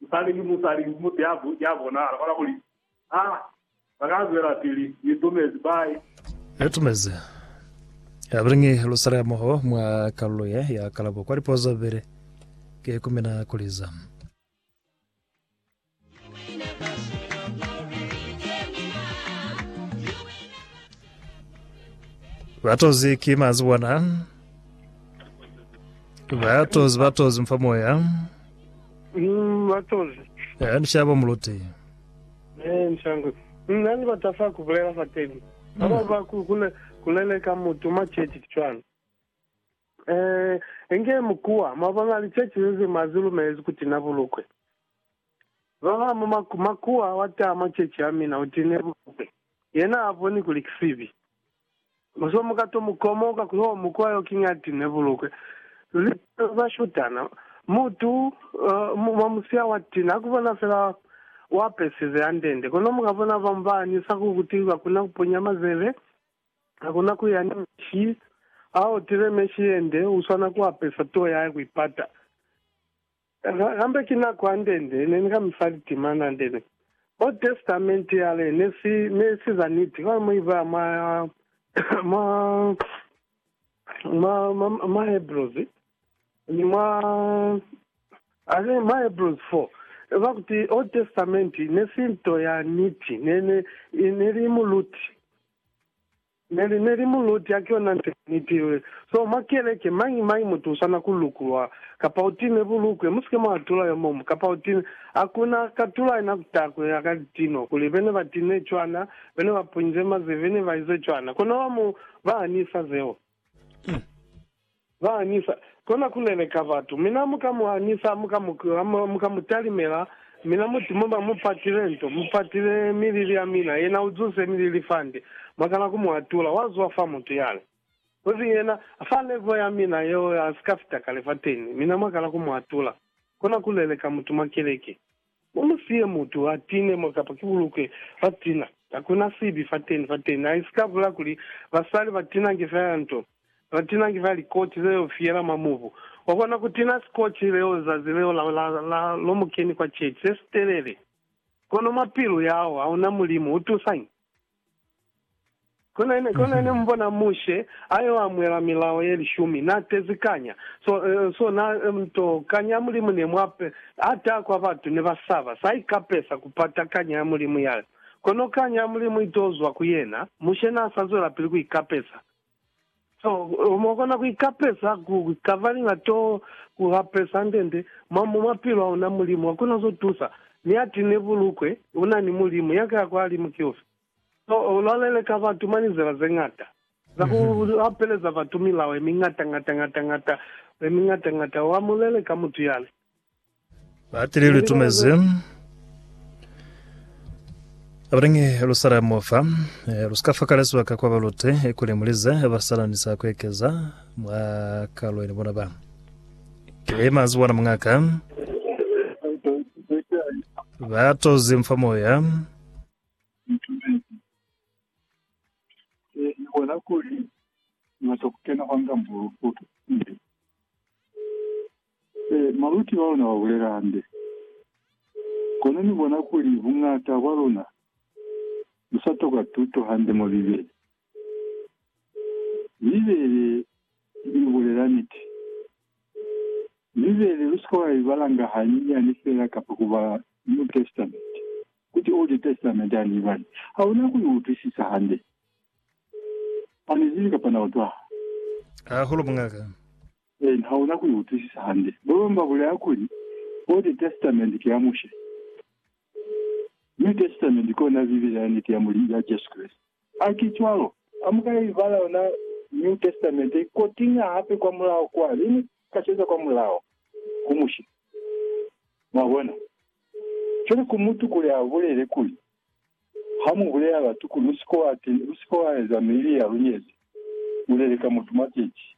Musali ni musali mutu ya ya bona alabona kuli a ba ka zwelapili ni tumezi bai. Ni tumezi ya bilingi lusali hamoho mwa kalulo ye ya kalabo kwa lipozo bili. Ki ku mina kuli za. Batozi ki mazi bona. Batozi batozi mfa moya. Ni matozi. Eya, ni shaya bo Muluti. Ee, ni shaya ngwe. Na ni bata fa ku bulela fateni. Ba bañwi ba ku, ku ne ku leleka mutu mwa ceci, ki cwalo. Ee, inge mu kuwa, mwa bona, liceci ze ze mwa zi lumelezi ku tina bulukwe. Ba ba mwa maku, makuwa, wa taha mwa ceci ya mina, u tine bulukwe. Yena ha boni kuli ki sibi. Muswa mu ka to mu komoka ku yo mu kwa yo kinya ti ne bulukwe. Luli palo za shutana. Mutu mwa musya wa ti na ku bona fela wa apesize andende. Kono mu ka bona bamu ba anyisa ku kuti ba kona ku ponya mazebe, ba kona ku ya ni meshi. Ha otile meshi yende, u swana ku apesa tuo ya hae ku ipata. Kambe ki nako ya ndende ne ni ka mi fa litima na ndende. Old Testament yale ne si, ne si za niti, kono mu ibala mwa, mwa, mwa, mwa, mwa Hebrews, ni mwa, I think mwa Hebrews 4, ba kuti Old Testament ne si nto ya niti, ne, ne, ne li muluti. Ne li, ne li muluti, haki yona nte niti. So, mwa keleke, mañi, mañi mutu usana ku lukulwa, kapa u time bulukwe, musike mwa atula yo muñwi, kapa u time. Hakuna a ka tula yena kutaa kuli a ka li tima, kuli bene ba time cwana, bene ba punyize mazeve ne ba ize cwana. Kono ba mu, ba hanisa zeo. Ba hanisa, kona ku leleka batu. Mina mu ka mu hanisa, mu ka mu, mu ka mu talimela, mina muti, Mu ba mu patile nto, mu patile milili ya mina. Yena u zunse milili fande. Mwa kana ku mu atula. Wa zwa fa mutu yale. Kozi yena, fa levo ya mina yeo, a si ka fita kale fateni. Mina mwa kana ku mu atula. Kona ku leleka mutu mwa keleke. U mu siye mutu a tine mo kapa ki bulukwe fa tina. Hakuna sibi fateni, fateni. Ha i si ka bula kuli basali ba tinange feela nto, ba tinange feela likoti ze yo fiyela mwa mubu. Wa kona ku tina sikoti leo zazi leo la, la, la, lo mu keni kwa chechi, se sitelele. Kono mwa pilu yahao hauna Mulimu, u tusañi? Kona ne, kona ne mubona Mushe ayo amuela milao ye lishumi, na tezi kanya, so, so na, nto, kanya ya Mulimu ne mwa pe, ata kwa batu ne ba saba, sa ikapesa kupata kanya ya Mulimu yale. Kono kanya ya Mulimu ito zwa ku yena, Mushe na sa zwelapili ku ikapesa. Seo mo kona ku ikapeza ku kavalinga to ku hapeza ndende mwa mo mapilo a una Mulimu a kona zo tusa. Mi ati ne bulukwe una ni Mulimu ya kaya kwa limu ki ufi? Seo lwa leleka batu mwa lizela ze ngata za ku lapeleza batu milao ye mi ngata ngata ngata ngata ye mi ngata ngata. Wa mu leleka mutu yale. Batili litumezi abalingi Yerusalemu fa eh, lusika fakala sibaka kwa balute kuli mulize basalanisa kuekeza mwa kalweni bona ba ke mazi bona mungaka batozi mfa moya bona kuli ngata kukena kwanga mbulu futu Ee, maluti ba luna ba bulela hande. Kono ni bona kuli buñata bwa luna lu sa tokwa tuto hande mwa Bibele. Bibele i bulela niti. Bibele lu si ka wa i balanga hanyinyani feela kapa ku bala New Testament, kuti Old Testament ha ni i bali. Ha una ku i utwisisa hande. Ha ni zibi kapa na utwaha. Hahulu, Muñ'a ka. Ee, hauna ku i utwisisa hande. Babañwi ba bulaya kuli, Old Testament ki ya Mushe. New Testament ki yona Bibele ya niti ya Mulimu, ya Jesu Kreste. Ha ki cwalo. Ha mu ka ibala yona New Testament ye, ko tiña hape kwa mulaho kwa, le ni ka ceza kwa mulaho, ku Mushe. Mwabona? Cwale ku mutu kuli a bulele kuli, Ha mu bulela batu kuli, U si ke wa, u si ke wa eza mibili ya lunyezi, u leleka mutu mwa kechi,